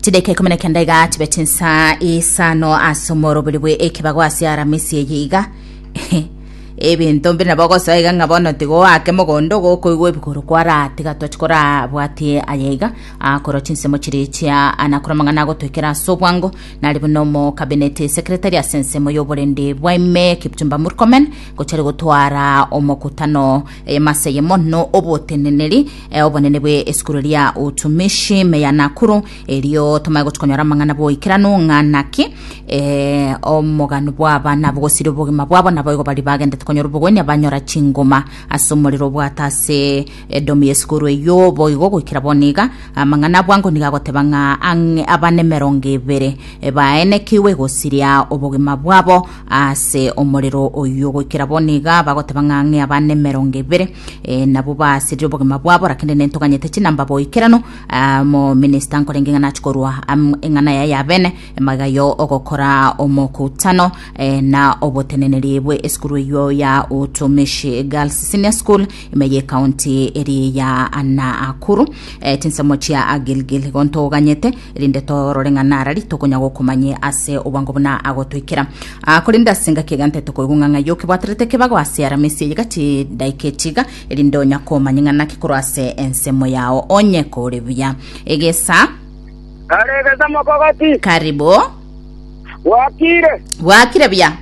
chideka ikumi na kenda iga chibeti nsa isano ase omorobori bwe ekebago ase aramisi eye iga ebinto mbiri nabo ogosoa iga ng'a bono tigoake mogondo gokoigwa ebigoro kwaratiga tochi korabwatie aye iga akorwa chinsemo chiri chia anakora amang'ana agotoekera ase obwango nari buna omo cabinet secretary ase ensemo y'oborende bwaime kipchumba murkomen gochari gotwara omokutano Eyemasa eye mono oboteneneri eh, obonene bwe esukuru ria utumishi meya Nakuru erio tomae gotukonyora amang'ana boikeranu ng'a naki eh, omogano bw'abana bogosiri obogima bwabo naboigo bari bagendete konyora obogoini abanyora chingoma ase omorero obwata ase edomi y'esukuru eyio boigo goikera boniga amang'ana abwango niga agoteba ng'a abana emerongo ebere eh, baenekiwe gosiria obogima bwabo Aase omorero oyio goikera bono iga bagoteba ng'a ng'e abana emerongo ebere eh, nabwo baasirire obogima bwabo rakende nentoganyete chinamba boikerano ah, mo minister nkorenge ng'a nachi korwa am- eng'ana yaye yabene magega yo ogokora omokutano eh, na oboteneneri bwe esukuru eyio ya utumishi girls senior school ime ye county eri ya Nakuru eh, chinsemo chia agilgil gontoganyete erinde torore ng'a nara rituko onya gokomanye ase obwango buna agotoikera. Aa, korende ase engaki egante tokoigwa ng'a ng'ai okebwaterete kebago ase Aramisi eye gati daika etiga, erinde onya komanye ng'a naki korwa ase ensemo yao. Onye kore buya. Egesa. Kare egesa mokogati. Karibu. Gwakire. Gwakire buya.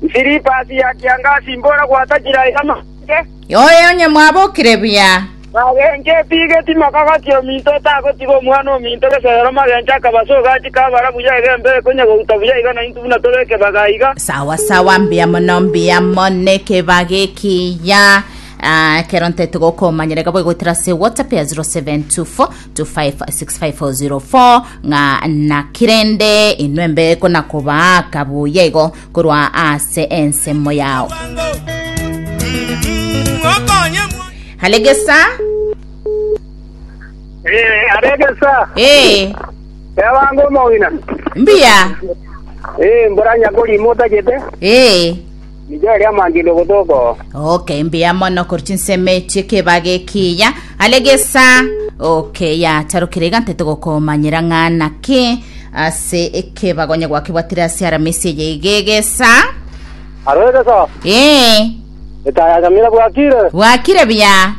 Nsiripasi ya kiangasi mbore gwatachire aye amabeke. Oye onye mwabokire buya. Bagencheti geti makagatia ominto otagotiga omwana ominto gesoero magencho akaba ase ogachi kabara buya egembe ekonya gouta buya iga naintwe buna tore ekebaga iga. Sawa sawa mbuya mono mbuya mono nekebaga ekiya Ah, ekero ntete gokomanyera iga boigoetera ase whatsapp ya 0724256504 ng'a nakirende inwe mbe konakobaa kabuya igo korwa ase ensemo yao halegesa Eh, aregesa. ee Ewango omogina. mbuya Eh, mbura nyakori mota jete. ee Nijo eria mangindo gotoko. okay mbuya mono korwa chinsemo echi ekebage ekiya halegesa okay yatarukire iga ntete gokomanyera ng'ana ki Ase ekebago onye gwakebwatire ase aramisi eye iga egesa. Aro egesa. Ee. Etaaya ya nyamira bwakire. Bwakire buya.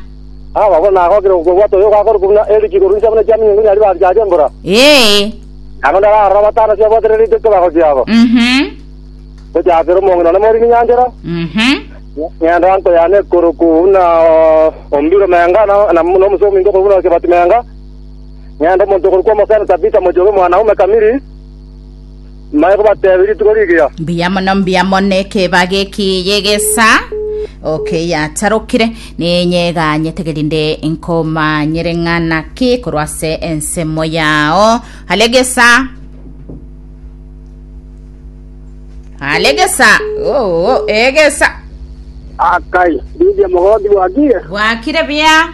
Aa babo nagokire gokobwata oyo ogakora kobuna Eric igoro inse buna chiaminyo ngonya ribaasi chiacha embura. Ee. Nabo ndararora batano chiabwatire rito ekebago chiabo. Mhm. Gochakera omonge none mori ninyanchera. Mhm. Ng'enda anko yane ekoro kobuna Ombiro Menga na, na, na omusomi ingo kobuna Kebati Menga. ng'ende omonto okorokwa omosani Tabitha mochie omwanaume kamiri, mbaye kobateebia rituko rigiya. Mbuya mono mbuya mono ekebage eki yegesa oke yatarokire ninyeganyete gerinde nkomanyere ng'ana ki korwa ase ensemo yao alegesa alegesa oo egesa Akai, Lydia mogoki bwakiire? bwakire bia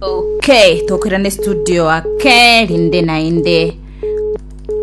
Okay, tokerane studio ake rinde naende.